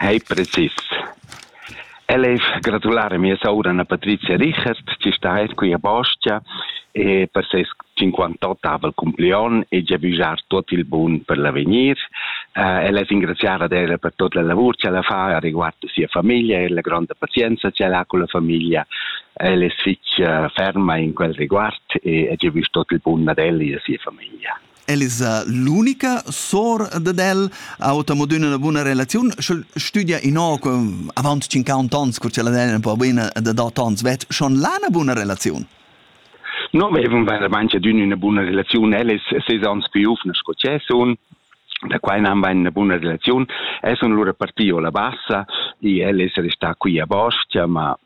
Ei precis. El ei gratular a mia soura Anna Patrizia Richert, chi sta eir quia Bostia e per seis cinquantottavel cumplion e giavüschar tuot il bun per l'avegnir. El es ingraziar ad ella per tuot la lavur ch'el ha fà a riguard a sia famiglia e la gronda pazienza ch'el ha culla famiglia. El es fich ferma in quel riguard e giavüsch tuot il bun ad el e a sia famiglia. El es l'unica sour dad el, ha ota mod üna buna relaziun, sch'el stüdia innoco avant 50 ans, cur ch'ella è un po buna da 8 ans, vet schon là una buna relaziun? No, avevamo veramente una buona relazione. Ella è sei anni più giovane sco che sono, da quai non va una buona relazione. E sono loro partito la bassa, e ella è restata qui a Bostia, ma